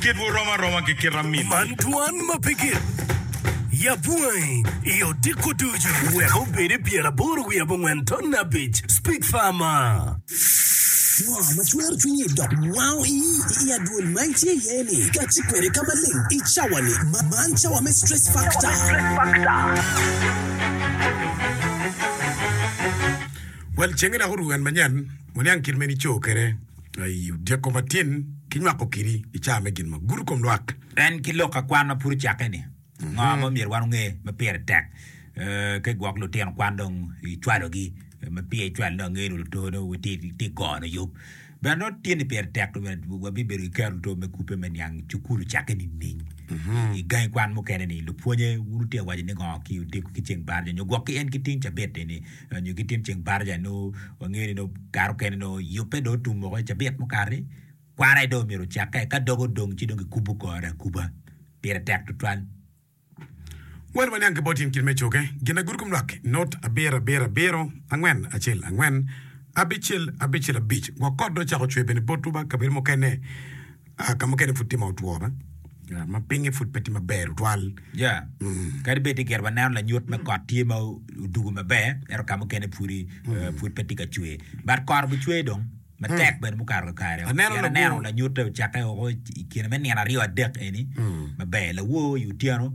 Kitwu rom aroma ki kit amin. Man twan ma pe gin. Yab wangi i odiko ducu. Wek obed i pyer aboro wiye abongwen ton abic. Speak Farmer. Ngo ma cwero cwinyi dok wango iyi i adwol ma itye iye ni kacce kwede ka maleng i cawa ni? Man cawa me stress factor. Well cenge dok oruko kan manyen waniang kit ma in ico kwede. I odyeko matin ki nywako kidi i caa me gin ma gudo kom lwak. En ki lok akwan ma pud ocakke ni, ngo ma myero wan onge ma pire tek ki gwok lutino kwan dong i cwalo gi ma pire icwalo dong angeyo ni luto dong witye gono yub bene nongo tye ni pire tek wa bibedo ki kero luto me kubbe me niang cukulu ocakke nining i gangi kwan mukene ni lupwonye wun lutino waco ni ngo ki odyeko ki ceng baraja nyo gwok ki en ki ting cabit eni. nyo ki tyeng ceng baraja nyo wangeyo ni nongo kare okene nongo yubbe dong otum woko i cabit mukati kwaro aye dong omyero ocakke ka dog odong ci dong kikubo kore akuba pire tek tutwal. Wel waniang ki bot in kit me coge. Gin ma gurukum lwak not abiro abiro abiro angwen acel angwen abicel abicel abic gwok kot dong ocako cwer bene botwu ba kabedo mukene. Ka mukene pud tye ma otwo ma pingnge pud pe tye maber tutwal. Ya, kadi bed ni gire waneno lanyut me kot tye ma odugo maber, ento ka mukene pudi eh, pud pe tye ka cwer. But kot obucwer dong matek bene mukato kakare-o. Aneno Pien labwor. aneno lanyutte ocakke oko i kine me nino aryo adek eni maber. Lawor i otyeno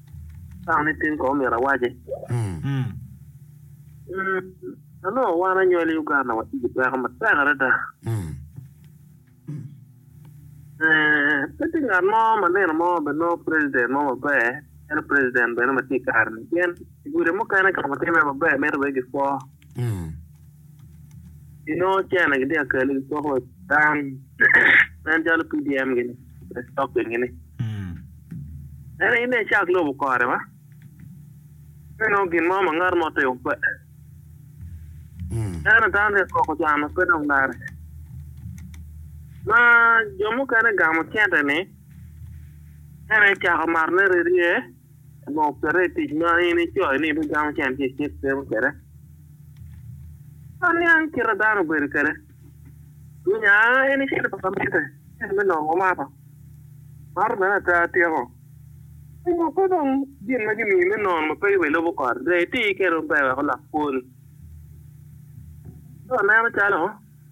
Tang ni tin kong myero awace. Ma nongo wan anyol i Uganda watye ki peko matek adada. Pe tye ngat mo ma nino mo ma nongo president mo maber calo president bene ma tye i kare-ni pien i gudi mukene ka mutimme maber mito wek gipwo. Inongo cene gitye ka kele ki koko dan nen calo PDM gini pe stock in gini. Ene ine cak lobo kore ma inongo gin mo ma ngat mo timo pe. Ene dan ri koko cano pe dong dare. Ma jo mukene gamo cente ni ene cako marone rerye. Lok kwede i tic ma in icoyo ni ibigamo cente i cik cimo kwede. Aniang kite dano obedo kwede. Nya en icito pa lamitte, cente me nongo omato. Mato bene ata atyeko. Onyo pe dong gin ma gimiyi me nono ma pe yubbe ilubo kore. Dong iti kwede maber wek olok kwoni. Ci waneno calo.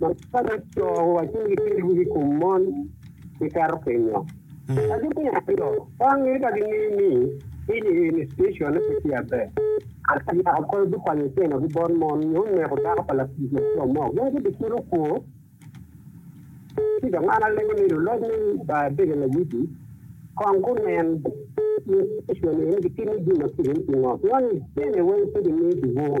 ma kala co wa ci gitero i kom mon gikato kenyo. Ka gitye aryo, kwan ni ka gingeyo ni piny i eni station pe tye aber, ento yako kore gukwanyo ceno gi bot mon nyo neko dako pa latic laco mo, gin gibicito kwo? Ci dong an alego ni luloc me Baibege Layiti kong gunen i station eni gitimo jami ma kit-ti pingo, pingo ni cene weng pe gimiyo ki bur.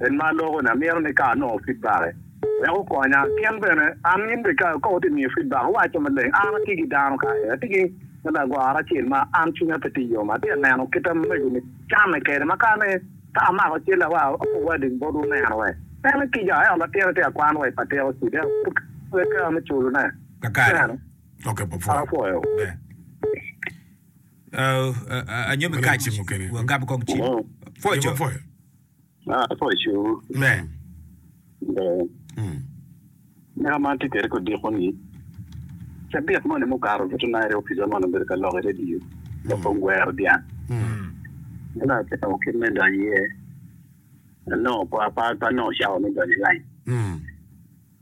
En ma aloko ni amito ni ka anongo fidbake wek okonya kin bene an in bene ka ka wati miyo fidbak iwaco maleng an ati ki dano kare ati ki lagoro acel ma an cwinya pe ti yom ati aneno kit amego ni camme kede ma ka ni ka amako cel awa owadi bot uneno we en i kica ento latin ati akwan wa i patika ocid ento pud pe kare me culu ne ineno apwoyo wi. Ah, apo icung. Amen. Ber. Mm. Meno ma atye kwede kodiko ni cabit moni mukato buto nairi opica moni obedo ka lok i redio loko mm. gwero dyang. Mm. Meno atemo kit me donyo iye. Anongo pa pa pa nongo cawa me donyo i lain. Mm.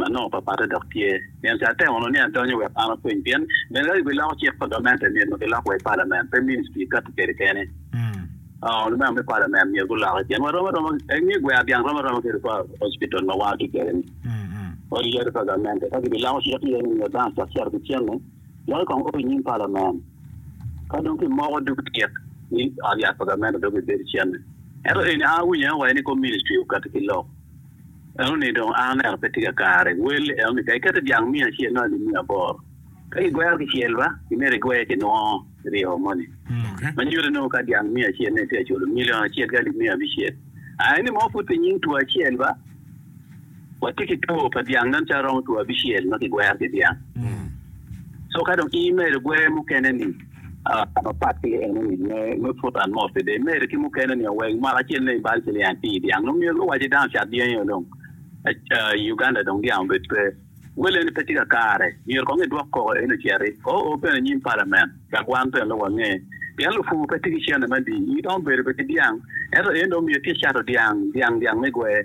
Anongo papatte dok tye, pien ca atemo nongo ni adonyo wek an apwony, pien bene ka giloko cik pa gament eni myero nongo gilok wa i palament, pe ministry kati kede kene. Lumeno me palament myero guloki pien warom aroma, inge gwer dyang rom aroma ki hospital ma wan watye kede ni, odi yadi pa gamente ka gibiloko cik iye ni myero dano ocak cito ki cente loki kong o inyim palament, ka dong kimoko dog cik ni ot yat pa gamente dong bibedo cente. Ento eni an awinyo aye wa ni kor ministry okati ki lok. Enoni dong a onero pe tye ka kare. Wel, Enoni ka iketo dyang miya acel nongo alib miya aboro. Ka gigwero kicel ba, imito igweye ki nwo ryo moni. Ma nyuto nongo ka dyang miya acel nongo itye ka culo milion acel ki alib miya abicel. A eni mo pud pi nying two acel ba, watye ki two pa dyang meno calo romo two abicel ma kigwero ki dyang. Co ka dong i imedo gweye mukene ni. Ka mapat ki enoni, me pwod an mot kwede imerre ki mukene ni owek mwaka acel ne i bal ci liang pii dyang nongo myero luwaci dano cat dyangi o dong i Uganda dong dyang obed pe wel eni pe tye ka kare myero kong idwok koko eni ociti o o bene inyim palament wek wan bene nongo wange pien lupur pe tye ki cene madi in dong ibedo bene ki dyang ento en dong myero tye icato dyang dyang dyang me gwer.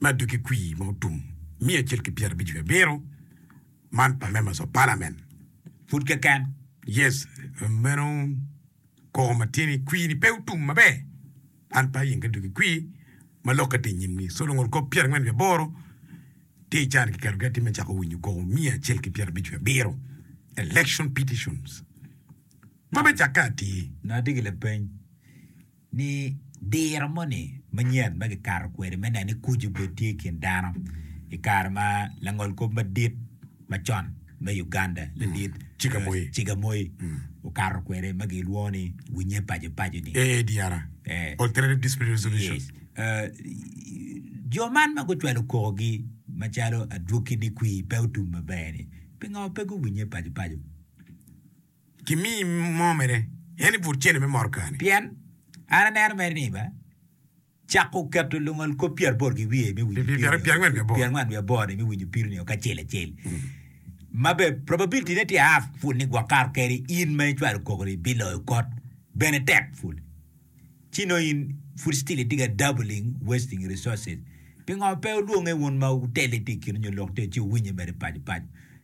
ma doggi kwir ma otum miya acel ki pyera abic ki abiro man pa members of parliament pud keken yes meno koko ma tye ni kwir ni pe otum maber man pa yinge doggi kwir ma lokke tye inyimgi so lungol kop pyera angwen ki aboro tye ican ki keto gi atima cako winyo koko miya acel ki pyera abic ki abiro election petitions ma me cakke atir. Nadigi lapeny. ni diro moni manyen ma kikato kwede me neno ni kuc obed tye i kin dano i kare ma langolkop madit macon me Uganda ladit Chigamoy okato kwede ma gilwongo ni winye paco paco ni AADR, Alternative Dispute Resolution. Jo man ma gucwalo koko gi macalo adwoki ni kwir pe otum maber ni pingo pe guwinye paco paco? kimiyi mo mene, en ni pud cente me motoka-ni. Pien an aneno mere ni me cako keto lungol kop pyeraboro ki wiye me winyo piri nio pyerangwen wiye aboro-ni me winyo piri nio kacel acel, ma bene probability-ne tye half pud ni gwok kato keri in ma icwalo koko-ni biloyo kot bene tek pud. Ci nongo in pud still itye ka dabbling, wasting resources. Pingo pe olwonge wun ma otelle tye i kinu nyo lok tye ci wuwinye mere paco paco?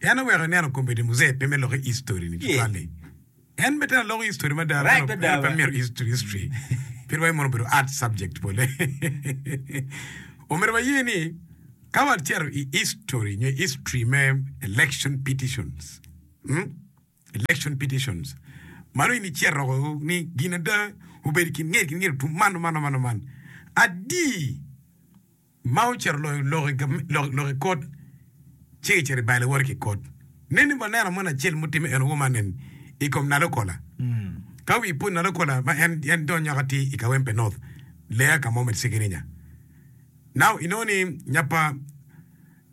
En oweko ineno kombeddi Muzee pe me loko histori ni tutwal-li. En bene tera aloko histori mada, ento en aye pe amito history history. Pire wa emono obedo art subject bole. Omyero waye ni ka wacito i histori nyo history me election petitions, mm, election petitions, mano in icito roko ni gin ada obedo i kin ngeri ki ngeri otum man oman oman oman. Adi? ma ocito loyo lok i kot, ci kicito i bal iwoto ki i kot. Nen ni waneno moni acel mutimme en owoma nen i kom Nalo Kola. Ka wi pwony Nalo Kola ma en en dong nyoka tye i Kawempe North, Leya ka mo me Cigirinya. Now inongo ni nya pa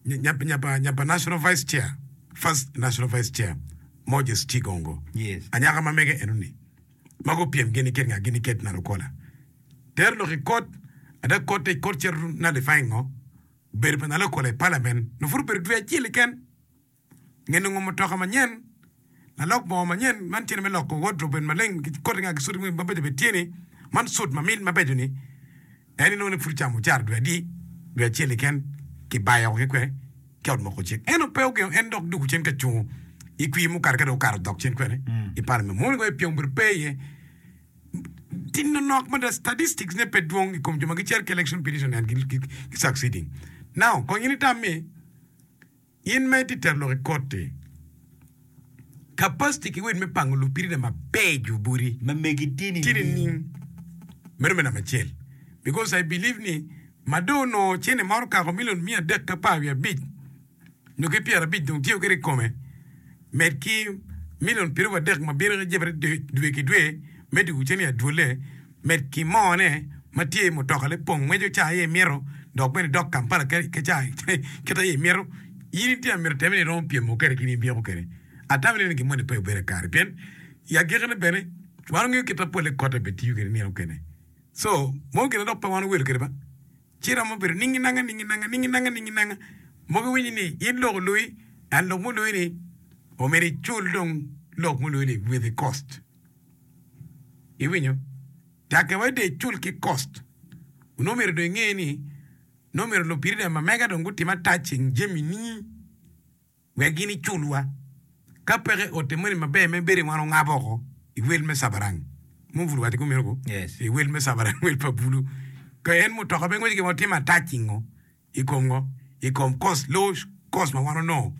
nya pa nya pa nya pa National Vice Chair, First National Vice Chair, Moses Chigongo, Yes. anyaka ma mege eno ni. ma gupyem gin iket nga gin iket na lukola. Tero lok i kot, ada kotte i kot cito na lifai ngo, bedo pa na lokola i palamen nyo pud obedo dwe acel keken, nge nongo mutoka manyen, lalok bongo manyen, man cene me loko wodrob obed maleng, kotte nga gicudi mogo mabeco bene tye ni, man sut mamit mabeco ni. En inongo ni pud ocamo ocara dwe adi, dwe acel keken kibaye oko ki kwene ki ot moko cik. Ento pe ogengo en dok duku cen ka cungo i kwir mukato ka dong okato dok cen kwene i parliament. Mono kong epyem obedo pe iye. Ti nonok mada statistics ne pe dwong i kom jo ma gicito ki election petition and gi succeeding. Now kong in itam ni In ma itye tero lok i koti, kapaciti ki wed me pango lupiri na mabeco boti tye nining? Meno me namba acel. Because I believe ni ma dong onongo cene maro okako milion miya adek ki apar wiye abic nyo ki pyerabic dong tiyo kwede i kome, med ki milion pyeraryo adek ma bino ki jebere dwe ki dwe me dwogo cente i adwolle, med ki moo ne ma tye i mutoka ne pong ngweco caa aye imito dok bene idok Kampala ka caa kit aye imito, in itye ka mito teme ni iromo pyemo kwede ki ni ibyeko kwede? Atamo ni gin moni pe obedo kakare pien i agikki ne bene wan wangeyo kit ma pole kote bene tiyo kwede nino mukene so mon gine dok pe wan owedo kwede ba. Ci romo bedo ningi nanga, ningi nanga, ningi nanga, ningi nanga, mogo iwinyi ni in lok olui, and lok mului ni omyero icul dong lok mului ni with the cost. Iwinyo? Take wai dong icul ki cost. Onongo myero dong inge ni nongo myero lupiri dong ma mega dong gutime attaching jami ni. wek gin iculwa, ka peke ote moni maber me bedo iwan ongabo oko i wel me cabarang mo obwulu wa tiku mito ku Yes. i wel me cabarang wel pa bulu ka en mutoka pe ngwec gimo tye matac i ngo i kom ngo i kom cost low cost ma wan onongo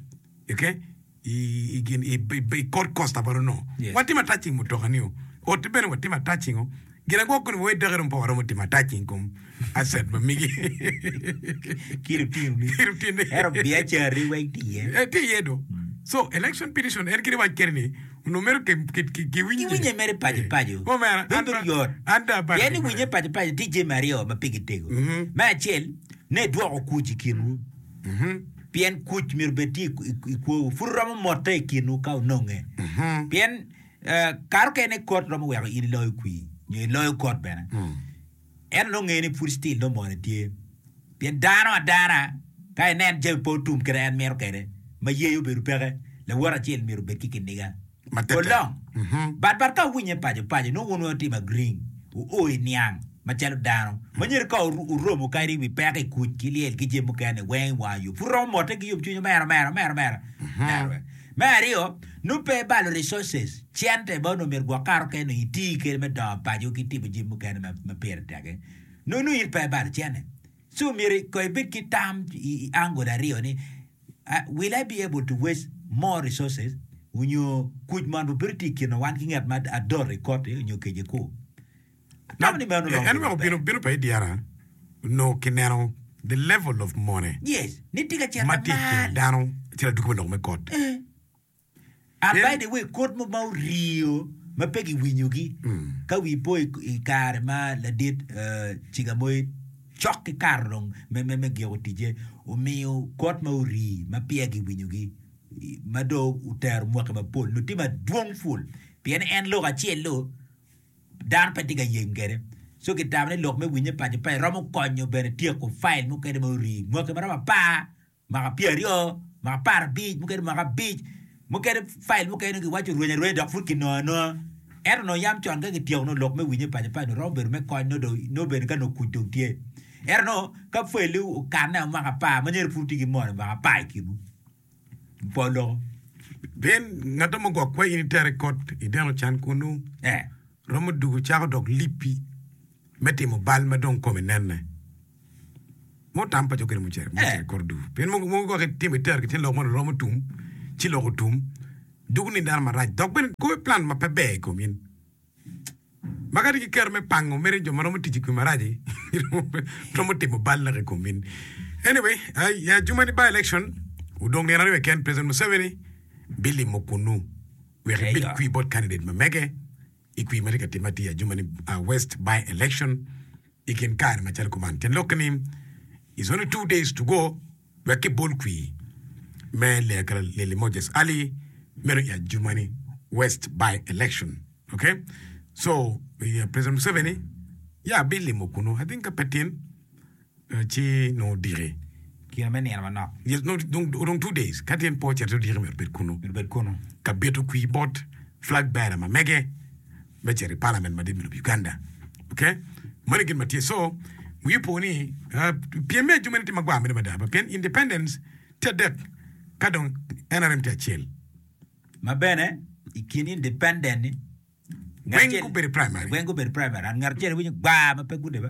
okay i i gin i i kod cost ma wan onongo Yes. watye matac i mutoka nio ote bene watye matac i ngo Ginagwok kodi wawed dok irom poko romo tim atac i kom aset ma migi ki lutinoni. Ento biacarri weng tye iye. Eh, tye iye do. So, election petition en kit wac keri ni onongo mero ki, ki, ki, ki winye. Kiwinye mere paco paco. Oh, man, an Bedo ba- yot. an da abalo Pien ni gimara. winye paco paco tye jami aryo ma pigi tego. Mhm. Me acel, ni edwoko kuc i kinwu. Mhm. Pien kuc myero bed tye i- i- i kwowu. Pud romo motte i kinwu ka ononge. Mhm. Pien Kato kene ni kot romo weko in iloyo kwir nyo iloyo kot bene, ento dong nge ni pud still dong moni tye. Pien dano adana ka enen jami pe otum kit ma en mito kwede, ma yeye obedo peke, lawote acel myero obed ki kiniga. Olong. But but ka wuwinye paco paco, nongo wun wutimo agreeing, wuo i niang macalo dano. Manyen ka wuromo kadi i wi peko i kuc ki lyel ki jami mukene weng i wang yo, pud romo motte ki yomcwiny omera omera omera omera. Me aryo, nongo pe ibalo resources, cente, ma onongo myero gwok kato kene nongo iti kede me dongo paco ki timo jami mukene ma ma pire tek-ki, nongo nongo in pe ibalo cente. So myero ko ibed ki tam i i angle aryo ni, will I be able to waste more resources onyo kuc man obino tye i kina wan ki ngat ma adot i koti onyo kece-ku? En weko bino bino pa idyara onongo ki neno the level of mone ma tye ikin dano ci laduki me lok me kot. A by the way kod mo ma oriyo ma pe giwinyo gi ka wi po i kare ma ladit ciga moye cok ki karo dong me me me giko tije omiyo kod ma ori ma peya giwinyo gi ma do otero mwaki mapol noti madwong ful pien en lok acel lo Dano pe tye ka yeng kwede. So kitamo ni lok me winyo paco paco romo konyo bene tyeko file mukene ma orii mwaki maromo apar, mwaka pyera aryo, mwaka apar abic, mukene mwaka abic. Mukene file mukene nongo kiwaco rweny arweny dok pud kinongo anonga. Ento nongo yam con ka kityeko nongo lok me winyo paco paco romo bedo me kony nongo dong nongo bene ka nongo kuc dong tye. Ento nongo ka file-li okanne o mwaka apar ma nyero pud tye ki moni mwaka apar i kinwu. polo. Pien ngatto mo gwok kweyo ni tere kot i deno can kunnu, romo dugo cako dok lipi me timo bal ma dong kome nenne. Mo tam pa cokkere mucere mucere kor dugo. Pien mo mo gwok itimo i tergi ci lok mono romo tum, ci lok otum, dugo ni dano marac dok bene goyo plan ma pe ber i komin. Ma kadi ki kero me pango mere jo ma romo tic i kwi marac-ci romo timo bal lake i kom in. Anyway, ah, i ajumani by election odong nino aryo keken, President Museveni bilimo kunnu wek Eyo. ebil kwi bot candidate ma mege i kwi ma tye ka timme atir i ajumani ah, west by election i kin kare macalo kuman. Tyen lok-ki ni is only two days to go wek kibol kwi me Leaker Lili Moses Ali meno i ajuma ni West by election ok so President Museveni ya abilimo kunu I think ka pe tin ci nongo odiki kine me nino manok yes no odong two days ka tin po cito odiki myero bed kunu myero bed kunu ka bito kwi bot flag bearer ma mege me cito i palament madit me lobo Uganda ok moni gin matye so wi opo ni pyem me ajume ni tye magwar mere mada pien independent tye adek kadong nrm tye acel ma bene i kin independent ni weng gubedo primary ngat acel winyo gwar ma pe gudebe.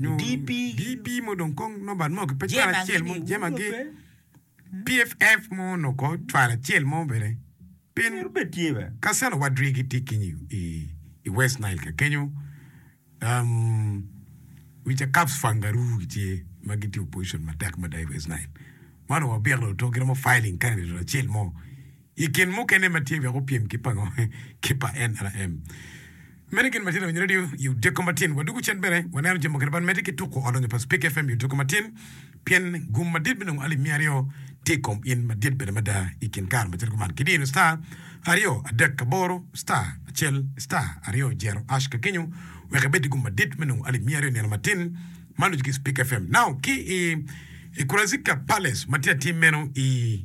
DP mo dong kong number mo ki pe cwalo acel mo jemagi PFF mo nongo ko cwalo acel mo bene pien Kasana wadri gitye keny i West Nile ka kenyo wica Caps Fangaroo gitye ma gitye opposition matek mada i West Nile ma onongo wabito to giromo filing candidate acel mo I kin mukene ma tye wek opyem ki pango ki pa NRM, meno gin matino winyo redio i Odiko Matin. Wa dugu cen bene waneno jami mukene bad mede ki tuku odonyo pa Speke FM i Odiko Matin pien gum madit me nongo alip miya aryo tye i kom in madit bene mada i kin kare macalo kuman ki dino star aryo adek aboro star acel star aryo jero ash ka kenyo wek ibed ki gum madit me nongo alip miya aryo nino matin ma nucu ki Speke FM now ki i i Kurazika Palace ma tye atim meno i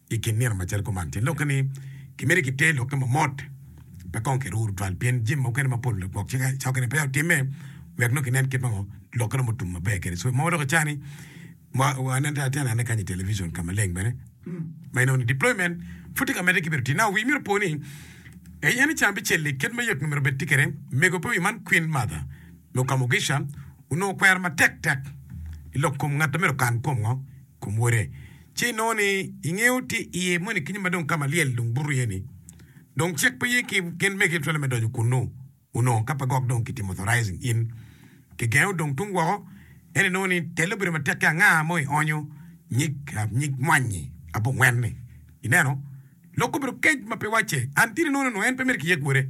I kin nino macalo kuman, tye lokke ni kimiti kiter lokke ma mot, pe kong kiruru tutwal pien jami mukene mapol lagwok cik cokkine peya otimme wek nongo kinen kit ma lokke romo tum maber kwede. So, mo dok ica ni waneno te atena ne kany i television ka maleng bene ma inongo ni deployment pud tye ka medde ki bedo tii. Now, wii myero opo ni Ee, in ican bicelli kit ma yot myero obed tye kwede. Mego pe wi man Kwin Martha me Okamogisha onongo kwero matek tek i lok kom ngat ma myero okan kom ngo. kom wode. Ci inongo ni ingeyo tye iye moni kenyo ma dong ka ma lyel dong buto iye ni dong cik pe ye ki gin me Kicwalo me donyo kunnu onongo ka pe gok dong ki timo authorizing in ki gengo dong tung woko ento inongo ni telle obedo matek ki anga mo i onyo nyig nyig mwanyi abongwen ni ineno lok obedo kec ma pe wacce until inongo ni onongo en pe mere ki yeg wode.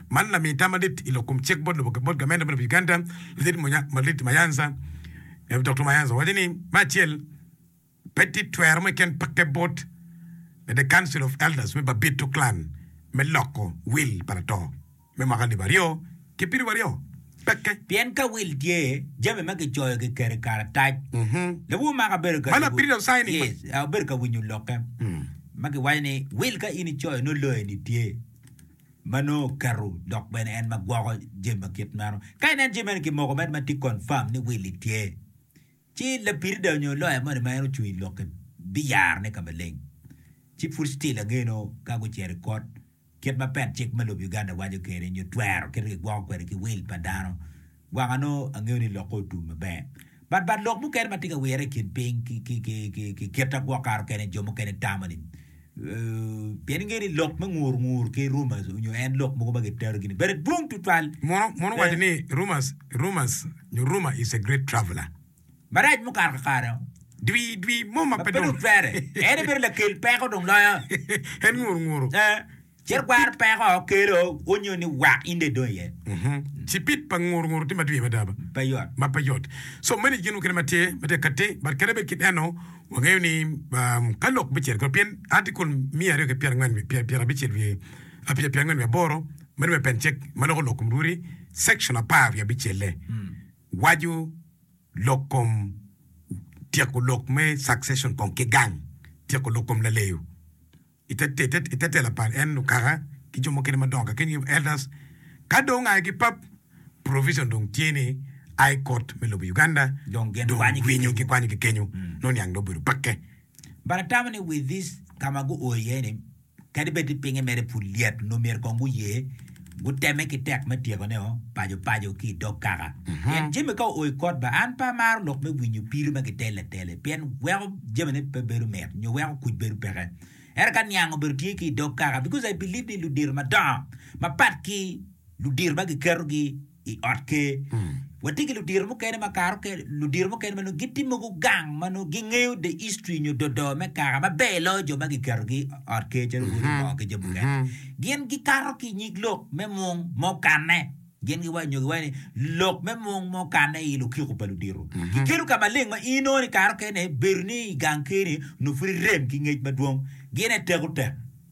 Man namiyo tam madit i lok kom cik bot lobo bot gamente me lobo Uganda, Ludit Malit Mayanza, Rev. Doktor Mayanza owaco ni, Me acel, pe tye twero mo iken pakke bot me The Council of Elders me Babito Clan me loko wil pa lato me mwaka alip aryo ki piriwu aryo. Peke. Pien ka wil tye, jami ma kicoyo kiketo i karatac. Lawur maka obedo ka Mano abiriyo cayi ni. Yes, obedo ka winyo lokke ma kiwaco ni, Wil ka in icoyo nongo loyoni tye. ma nongo oketo dok bene en ma gwoko jami ma kit meno. Ka inen jami meno kimoko med ma tye confirm ni Willie tye, ci lapirida nyo loya moni ma en ocung i lokke biyarone ka maleng. Ci pud still ange nongo ka gucito i kot, kit ma pet cik me lobo Uganda waco kwede nyo twero kit ma kigwoko kwede ki will pa dano, Gwaka nongo angeyo ni lokke otum maber. But but lok mukene ma tye ka wirre i kin piny ki ki ki ki ki kit ma gwok kato kene jo mukene tamo ni uh pien ingeyo ni lok me ngur ngur ki rumors onyo en lok mogo ma gitero gini bene dwong tutwal. Mono mono waco ni rumors rumors nyo rumor is a great traveler. Marac mukato kakare o. Dwi dwi mo ma Ma pe pe dong. dong twere. En aye bedo lakel peko dong loyo. En ngur nguru. Eh. Cit kwaro peko kelo onyo ni wak in dong idong iye. Cipit pa nguru nguru tye madwir mada ba? Pe yot. Ma pe yot. So mani gin mukene ma tye ma tye ka ti but kadi bed ki eno wangeyo ni ka lok me ciro kore pien article miya aryo ki pyerangwen wiye pyer pyer abicel wiye apyer pyer angwen wiye aboro mani me pen cek ma loko lok kom lwuri section apar wiye abicelle waco lok kom tyeko lok me succession kong ki gang tyeko lok kom laleyo. I te tela pa en okaka ki jo mukene madongo kakeni nyo elders, ka dong aye ki pap, provision dong tye ni High Court me lobo Uganda dong winyo gikwanyo ki kenyo, nongo niang dong obedo pakke. But atamo ni with this ka ma guo iye ni kadi bed ni pinge mere pud lyet nongo myero kong guye. Guteme ki tek me tyekoneo pacopaco ki i dog kaka. Pien Jimmy ka oo i kot ba, an pe amaro lok me winyo piri ma kitelo atela-li, pien weko jamine pe bedo mit, nyo weko kuc bedo peke. Ento ka niang obedo tye ki i dog kaka, because I believe ni ludito madongo mapat ki ludito ma giketogi, i ot ker. Watye ki ludito mukene ma kare mukene ludito mukene ma nongo gitye mogo gang ma nongo gingeyo the history nyo dodoo me kaka maber loyo jo ma giketogi i ot ker calo wod omoo ki jo mukene. Gin gikato ki i nyig lok me mung ma okanne. Gin giwaco nyo giwaco ni lok me mung ma okanne i lukiko pa ludito. Gikelo ka maleng ma in nongo ni kare mukene bedo ni i gang ker-ni nongo pud irem ki ngec madwong. Gin aye teko tek.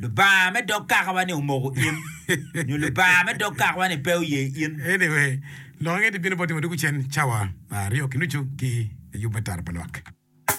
Lubanga me dog kakawa-ni omoko in? Nyo Lubanga me dog kakawa-ni pe oye in? Anyway, lok ange di bino bot timo duk cen cawa ma aryo ki nucu ki layub me tara pa lwak.